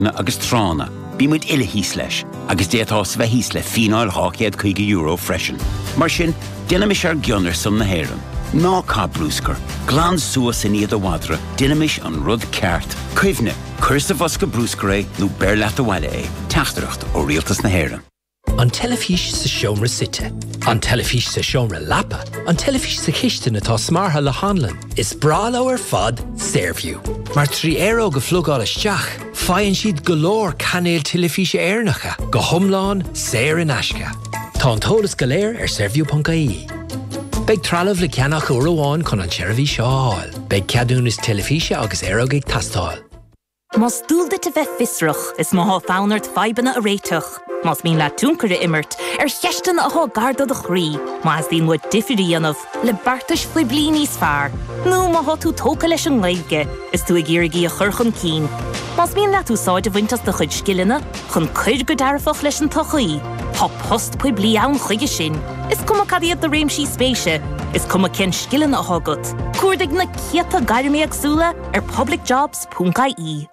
Tránna agus tránna, bíonn muid uile thíos leis, agus d'fhéadfá-sa bheith thíos le fíneáil €250 freisin. Mar sin, déanaimis ár gcion ar son na hÉireann. Ná caith bruscar, glan suas i ndiaidh do mhadra, déanaimis an rud ceart. Cuimhnigh, cuir sa bhosca bruscair é nó beir leat abhaile é. Teachtaireacht ó Rialtas na hÉireann. An teilifís sa seomra suite. An teilifís sa seomra leapa. An teilifís sa chistin atá smeartha le hanlann. Is breá leo ar fad Saorview, mar trí aeróg a phlugáil isteach, faigheann siad go leor cainéil teilifíse Éireannacha, go hiomlán saor in aisce. Tá an t-eolas go léir ar Saorview.ie. Beidh trealamh le ceannach uair amháin chun an tseirbhís seo a fháil. Beidh ceadúnas teilifíse agus aeróg ag teastáil. Más dual duit a bheith fiosrach, is má tá fonn ort fadhbanna a réiteach, más mian leat tionchar a imirt ar cheisteanna atá gar do do chroí, má theastaíonn uait difear a dhéanamh le beartais phoiblí níos fearr, nó má tá tú tógtha leis an nGaeilge is tú ag iarraidh í a chur chun cinn, más mian leat úsáid a bhaint as do chuid scileanna chun cur go dearfach leis an tsochaí, tá post poiblí ann chuige sin, is cuma cad iad do réimsí spéise, is cuma cén scileanna atá agat. Cuardaigh na céadta gairm éagsúla ar Public Jobs. .ie.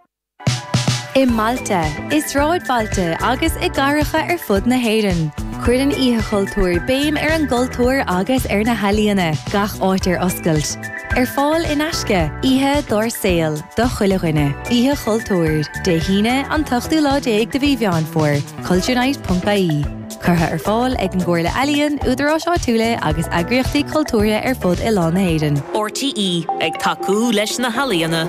I mbailte, i sráidbhailte agus i gcathracha ar fud na hÉireann, cuireann Oíche Chultúir béim ar an gcultúr agus ar na healaíona, gach áit ar oscailt. Ar fáil in aisce, oíche dár saol do chuile dhuine. Oíche Chultúir, Dé hAoine, an t-ochtú lá déag de mhí Mheán Fómhair, culturenight.ie. curtha ar fáil ag an gComhairle Ealaíon, Údaráis Áitiúla agus Eagraíochtaí Cultúrtha ar fud oileán na hÉireann. RTÉ ag tacú leis na healaíona.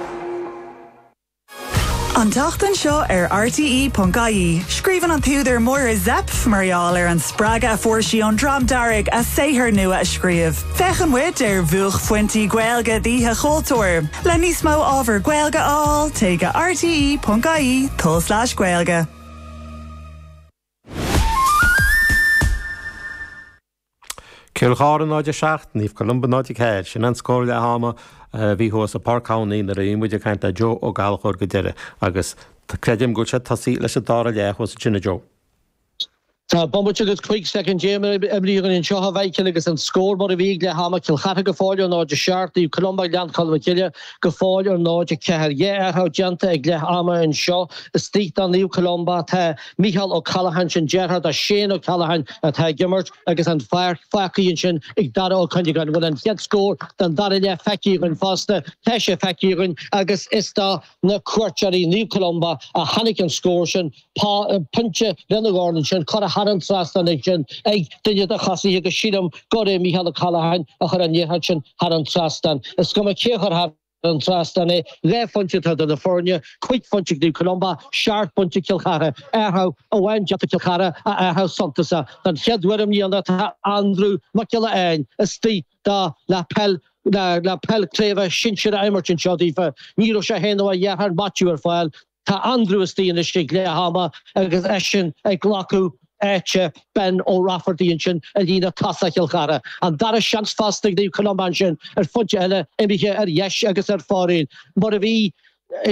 An tseachtain seo ar RTÉ.ie, scríobhann an t-údar Máire Zepf mar gheall ar an spreagadh a fuair sí ón Dream Dearg a saothar nua a scríobh. Féachann muid ar bhuaicphointí Gaeilge d'Oíche Chultúir. Le níos mó ábhar Gaeilge a fháil, téigh go RTÉ.ie/Gaeilge. Cill Chartha 0-7, Naomh Columba 0-4, sin an scór leath ama a bhí thuas i bPáirc Thamhnaigh nuair a bhí muid ag caint le Joe Ó Gallchóir go deireadh agus creidim go bhfuil sé tosaithe leis an dara leath thuas ansin, a Joe. Tá bomaite agus 5 soicind déag imithe againn anseo a Mhichíl agus an scór mar a bhí ag leath ama, Cill Chartha go fóill ar 0-7, Naomh Columba Gleann Cholm Cille go fóill ar 0-4. Dhá athrú déanta ag leath ama anseo istigh do Naomh Columba atá Micheál Ó Ceallacháin sin deartháir do Shane Ó Ceallacháin atá ag imirt agus an pháirc fágtha ansin ag Dara Ó Cuinneagáin bhfuil an chéad scór den dara leath feicthe againn fosta tá sé feicthe againn agus is do na cuairteoirí Naomh Columba a tháinig an scór sin pointe lena dhorn ansin curtha thar an trasnán ansin ag duine de thosaithe agus sílim gurb é Micheál Ó Ceallacháin a chuir an liathróid sin thar an trasnán is cuma cé a chuir thar don trasnán é, dhá phointe atá idir na foirne, cúig phointe ag Naomh Columba, seacht bpointe ag Cill Chartha. Athrú amháin déanta ag Cill Chartha, athrú suntasach. Don chéad uair i mbliana tá Andrew Mac Giolla Eáin istigh do na peil na peil craoibhe sinsir á imirt anseo daofa. Ní raibh sé féin nó a dheartháir Maitiú ar fáil do. Tá Andrew istigh anois ag leath ama agus eisean ag glacadh áite Ben Ó Raifeartaigh ansin i líne tosaigh Chill Chartha. An dara seans fosta ag Naomh Columba ansin ar phointe eile imithe ar dheis agus ar fóraoil mar a bhí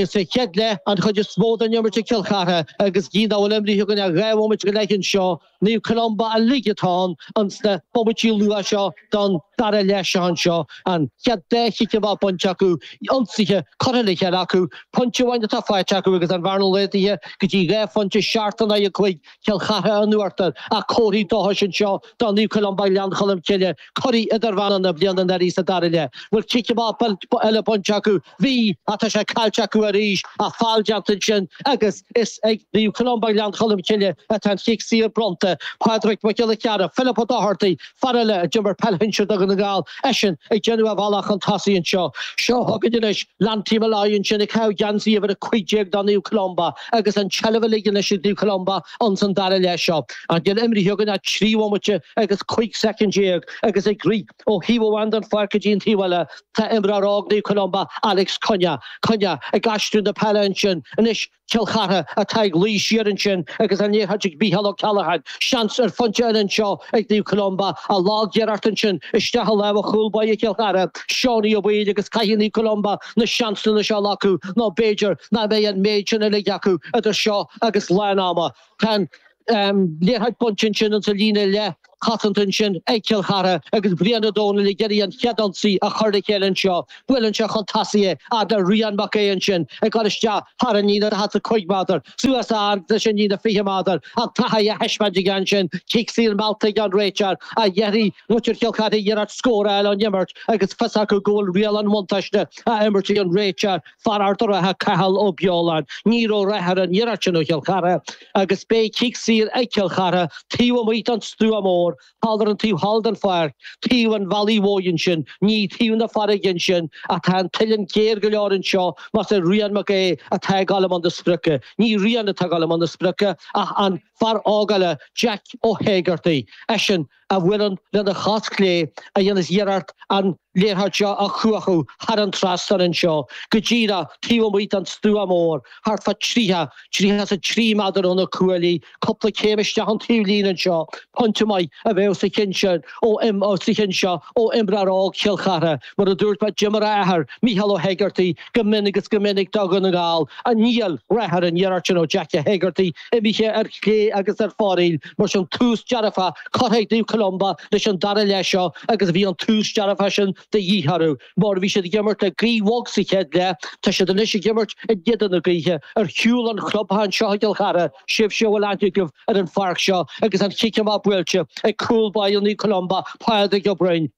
sa chéad leath an chuid is mó den imirt ag Cill Chartha agus gidh nach bhfuil imrithe againn ach dhá bhomaite go leith anseo Naomh Columba uilig atá ann ins na bomaití luatha seo don dara leath seo anseo, an chéad dá chic amach bainte acu, ionsaithe curtha le chéile acu, pointe amháin atá faighte acu agus an bhearna laghdaithe go dtí dhá phointe seacht in aghaidh a cúig Cill Chartha in uachtar ach comharthaí dóchais anseo do Naomh Columba Ghleann Cholm Cille, curaidh idirmheánach na bliana anuraidh sa dara leath. Bhfuil cic amach eile bainte acu? Bhí, ach tá sé caillte acu arís, ach feall déanta ansin agus is ag Naomh Columba, Gleann Cholm Cille, atá an cic saor bronnta. Pádraig Mac Giolla Chearra, Philip Ó Dochartaigh, fear eile a d'imir peil shinsir do Dhún na nGall, eisean ag déanamh a bhealach chun tosaigh anseo. Seo chugainn anois Lanty Molloy ansin ag caitheamh geansaí uimhir 15 do Naomh Columba agus an tseilbh uilig anois ag Naomh Columba ins an dara leath seo. Chan fhuil imrithe againn ach trí bhomaite agus 15 soicind agus ag rith. Ó thaobh amháin den pháirc go dtí an taobh eile, tá imreoir óg Naomh Columba, Alex Cunnea, Cunnea, ag aistriú na peile ansin. Anois Cill Chartha atá ag luí siar ansin agus an liathróid ag Micheál Ó Ceallacháin. Seans ar phointe eile anseo ag Naomh Columba. Ach lagiarracht ansin isteach i lámha chúl báire Chill Chartha, Seánie Ó Baoill agus caithfidh Naomh Columba na seansanna seo a ghlacadh nó b'fhéidir nach mbeidh an méid sin uilig acu idir seo agus lán ama. Tá an liathróid bainte ansin ins an líne leathchosanta ansin ag Cill Chartha agus Brian Ó Domhnaill ag iarraidh an chéad ionsaí a chur le chéile anseo. Buaileann sé chun tosaigh é agus tá Rian Mac Aodha ansin ag cur isteach thar an líne daichead 's a cúig méadar, suas fhad leis an líne fiche méadar, an taithí á thaispeáint aige ansin, cic saor meallta aige ón réiteoir ach déanfaidh muintir Chill Chartha iarracht scóráil ón imirt agus fios acu go bhfuil riail an bhuntáiste á imirt ag an réiteoir Fear Ard an Rátha Cathal Ó Beoláin, ní raibh rath ar an iarracht sin ó Chill Chartha, agus beidh cic saor ag Cill Chartha, taobh amuigh don Stua Mór, thall ar an taobh thall den pháirc, taobh an Bhealaigh Mhóir ansin, ní taobh na farraige ansin, ach tá an uillinn géar go leor anseo, más é Rian Mac Aodha atá ag dul i mbun na sprioce. Ní Rian atá ag dul i mbun na sprioce, ach an fear óg eile, Jack Ó hÉigeartaigh. Eisean. a bhuaileann lena chos chlé a dhéanas iarracht an liathróid seo a chuachadh thar an trasnán anseo go díreach taobh amuigh den stua mór, thart fá tríocha, tríocha is a trí meadar ó na cuaillí, cupla céim isteach an taobhlíne anseo, pointe maith a bheadh sa cheann sin ó, sa cheann seo ó imreoir óg Chill Chartha, mar a dúirt mé d'imir a athair, Micheál Ó hEigeartaigh, go minic is go minic do Dhún na nGall, ach níl rath ar an iarracht sin ó Jackie Hegarty. imithe ar chlé agus ar fóraoil, mar sin, tús dearfa curtha ag Naomh Columba leis an dara leath seo agus bhí an tús dearfa sin de dhíth orthu mar bhí siad ag imirt le gaoth bhog sa chéad leath, tá siad anois ag imirt in éadan na gaoithe. Ar shiúl ón chlubtheach anseo i gCill Chartha, sibhse a bhfuil aithne agaibh ar an pháirc seo, agus an chic amach buailte ag cúl báire Naomh Columba, Pádraig Ó Broin.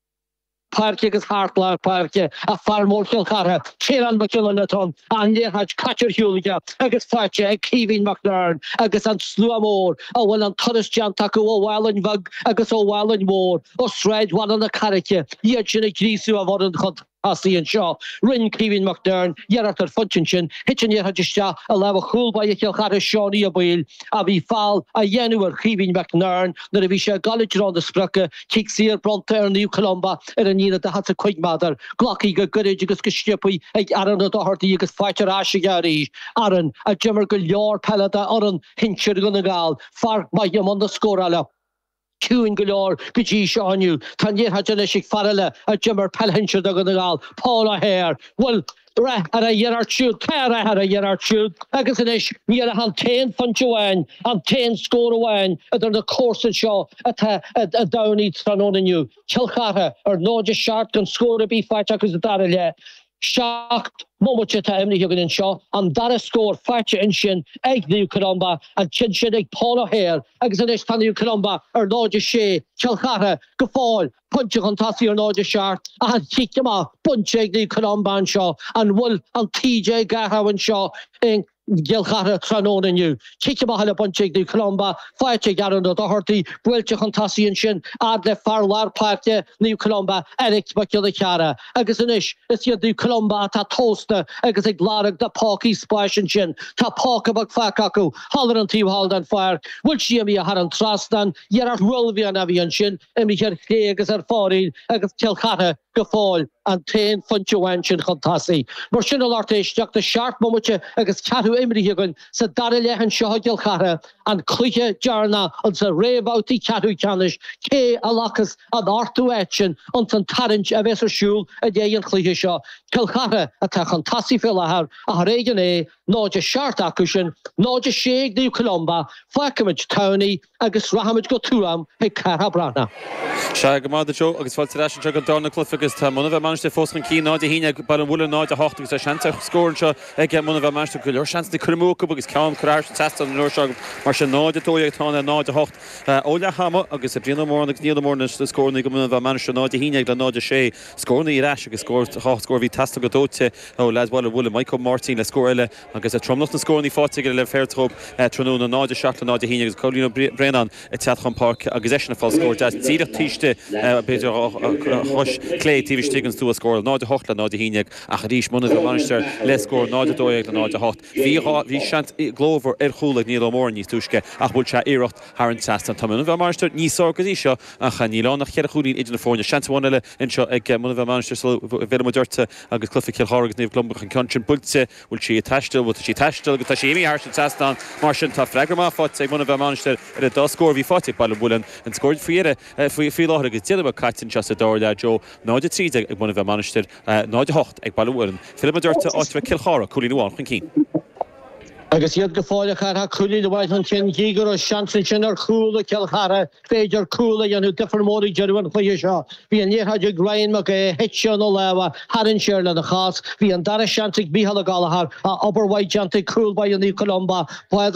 páirce agus thart lár páirce ag fear mór Chill Chartha, Ciarán Mac Giolla Chatáin, an liathróid caite ar shiúl aige agus faighte ag Caoimhín Mac Bhearn agus an slua mór a bhfuil an turas déanta acu ó Mhálainn Bheag agus ó Mhálainn Mhór ó Sráid Bhaile na Carraice iad sin ag gríosú a bhfoireann chun tosaigh anseo. Rinne Caoimhín Mac Bhearn iarracht ar phointe ansin, thit an liathróid isteach i lámha chúl báire Chill Chartha Seánie Ó Baoill ach bhí feall á dhéanamh ar Chaoimhín Mac Bhearn nuair a bhí sé ag dul i dtreo na sprice Cic saor bronnta ar Naomh Columba ar an líne 45 méadar. Glactha go gairid agus go sciobtha ag Aaron Ó Dochartaigh agus faighte ar ais aige arís. Aaron a d'imir go leor peile d'fhoireann shinsir Dhún na nGall. Fear maith i mbun na scórála. Ciúin go leor go dtí seo inniu. Tá an liathróid anois ag fear eile a d'imir peil shinsir do Dhún na nGall, Paul O'Hare. Bhuel, rath ar a iarracht siúd, tá rath ar a iarracht siúd, agus anois níl ach an t-aon phointe amháin, an t-aon scór amháin idir na comharsain seo ar Pháirc an Tamhnaigh tráthnóna inniu. Cill Chartha ar náid a seacht gan scór ar bith faighte acu sa dara leath. Seacht mbomaite atá imrithe againn anseo, an dara scór faighte ansin ag Naomh Columba, an ceann sin ag Paul O'Hare, agus anois tá Naomh Columba ar náid a sé, Cill Chartha go fóill. Pointe chun tosaigh ar náid a seacht, achan chic amach bainte ag Naomh Columba anseo. An bhfuil an taoide ag athrú anseo i gCill Chartha tráthnóna inniu? Cic amach eile bainte ag Naomh Columba, faighte ag Aaron O'Doherty, buailte chun tosaigh ansin fhad le fear lár páirce Naomh Columba, Eric Mac Giolla Chearra, agus anois is iad Naomh Columba atá tomhasta agus ag lorg na pócaí spáis ansin. Tá póca beag fágtha acu thall ar an taobh thall den pháirc. An bhfuil sí imithe thar an trasnán, iarracht uaillmhianach a bhí ansin, Imithe ar chlé agus ar fóraoil agus Cill Chartha go fóill an t-aon phointe amháin sin chun tosaigh. Mar sin a lucht éisteachta seacht mbomaite agus ceathrú imrithe againn sa dara leath anseo i gCill Chartha, an cluiche deireanach insna réamhbhabhtaí ceathrú ceannais, cé a ghlacas an ochtú áit sin ins an tarraingt a bheas ar siúl i ndiaidh an chluiche seo? Cill Chartha atá chun tosaigh faoi láthair ach ar éigean é, 0-7 acu sin, 0-6 ag Naomh Columba. Fágfaimid Tamhnaigh. agus rachaimid go Tuaim chuig Cárthach Breathnach. Sea, go raibh maith agat Joe, agus fáilte ar ais anseo don darna cluife agus tá Muine Mheá Mainistir fós chun cinn 0-11 ag Baile an Mhuilinn 0-8 agus tá seans ar scór anseo ag Muine Mheá Mainistir, go leor seans curtha amú acu agus ceann curtha thar an trasnán an uair seo acu, mar sin 0-12 atá ann le 0-8 ó leath ama agus Brian Ó Móráin agus Niall Ó Móráin le scóranna do Muine Mheá Mainistir 0-11 le 0-6 scóranna ar ais agus scór dhá scór a bhí teastáilte go dóite ó leaid Bhaile an Mhuilinn, Maidhc Ó Máirtín le scór eile. Agus tromlach na scórannaí faighte aige le Fairthehope tráthnóna, 0-7 le 0-11, agus Cóilín Ó Braonáin ag teacht chun páirce agus eisean ag fáil scór deas díreach taobh istigh b'fhéidir a chois chlé taobh istigh den stua scórála, 0-8 le 0-11. Ach arís Muine Mheá Mainistir le scór 0-12 le 0-8, bhí seans glórmhar ar chúl ag Niall Ó Móráin níos túisce ach bhuail sé iarracht thar an trasnán. Tá Muine Mheá Mainistir níos fearr go dtí seo ach níl ann ach ceithre chúilín idir na foirne. Seans amháin eile anseo ag Muine Mheá Mainistir sula bhfillfimid ortsa. Agus cluife Cill Chartha agus Naomh Columba an ceann sin buailte, bhfuil sé ag taisteal? Bhuel, tá sé ag taisteal agus tá sé imithe thar an trasnán. Mar sin, tá freagra maith faighte ag Muine Mheá Mainistir ar an dá scór a bhí faighte ag Baile an Mhuilinn, an scór faoi dheireadh faoi láthair agus deich nóiméad caite anseo sa dara leath, Joe. 0:13 ag Muine Mheá Mainistir, 0:08 ag Baile an Mhuilinn. Fillfidh muid ortsa, áit a raibh Cill Chartha, cúilín amháin chun cinn. Agus iad go fóill, a Chárthaigh, cúilín amháin chun cinn, gí go raibh seans ansin ar chúl ag Cill Chartha, féidir cúl a dhéanamh difear mór ag deireadh an chluiche seo. Bhí an liathróid ag Ryan Mac Aodh, thit sé óna lámha, tharraing sé air lena chos. Bhí an dara seans ag Micheál Ó Gallachóir, ach obair mhaith déanta ag cúl báire Naomh Columba, Pádraig